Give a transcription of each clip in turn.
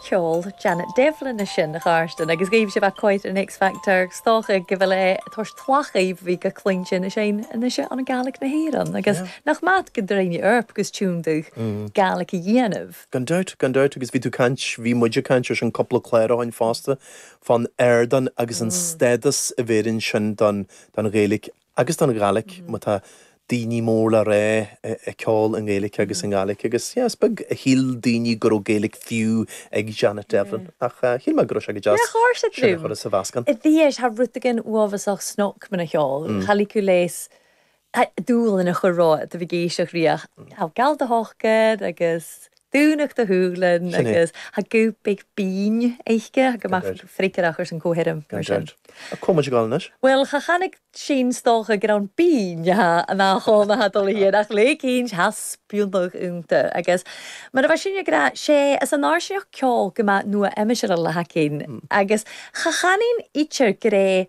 Ceol Janet Devlin a sin ghairstin agus ghaibh sé bheith cáit ar an X Factor. Is dócha go bhfuil é toisc tlath ghaibh bhí go cinnte anois fhein anois é an Gaelic na hÉireann agus nach maith gun d' rinn i oidhirp agus tiontú Gaelic a dhéanamh. Gan dabht, gan dabht agus bhí tú caint, bhí muid ag caint ar sin cúpla clár ó shin fosta fán ardán agus an stádas a bheireann sin don don Ghaeilic agus don Ghaidhlig, má tá daoine mór le rá ag ceol i nGaeilge agus i nGaidhlig, agus yeah, is beag a shíl daoine go raibh Gaeilge fiú ag Janet Devlin, ach shíl mé go raibh sé go deas sin a chur sa mheascán. Tá deis tha rud éigin uafásach snog mun a' cheòl, cha leig thu leas dul ina chorr-radh, do bhí ag èisteachd ri, a' gabhail do shocair agus. Dúnadh do shùilean agus tha guth big binn aice gu math freagarrach airson co-sheirm, mar sin. Ach comh muid ag gabháil anois. Bhuel, cha chanainn 's dòcha gur ann bean thá an achán a thá dul a théann ach le cinnt tha spionadh ionnta agus mar a bha sinn ag rá, sé is a náirsineach ceol gu math nua-aimseartha le hAice Inch agus cha chanainn idir gur é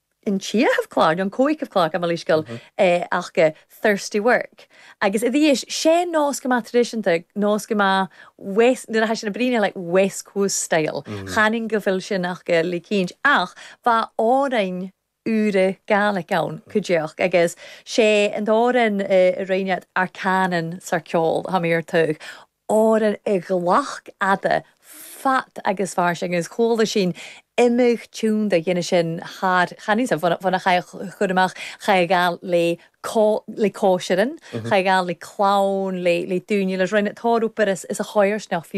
an ceathramh clàr, no an còigeamh clàr, I'm a laois gil, é ach Thirsty Work. Agus i dthaois, 'sé nós go maith traidisiúnta, nós go maith west, nuair a thaitin na bruíne, like west coast style. Chanainn go bhfuil sin aca le cinnt. Ach bha òrain ùra Gaelic ann, cuideachd, agus 'sé an t-òran a rinn iad, 'Ar Cànan 's ar Ceòl', a tha mi air tugadh. áireamh i gcloch fhada, fad agus fairsing, agus chuala sinn imeacht tionndadh a dhéanamh sin thar, chan fhios, bhon a chaidh a chur amach, chaidh a ghabhail le le còisirean, chaidh a ghabhail le clann, le le daoine, le roinnt, tórramh, b'fheidir, is a choisneach fiú.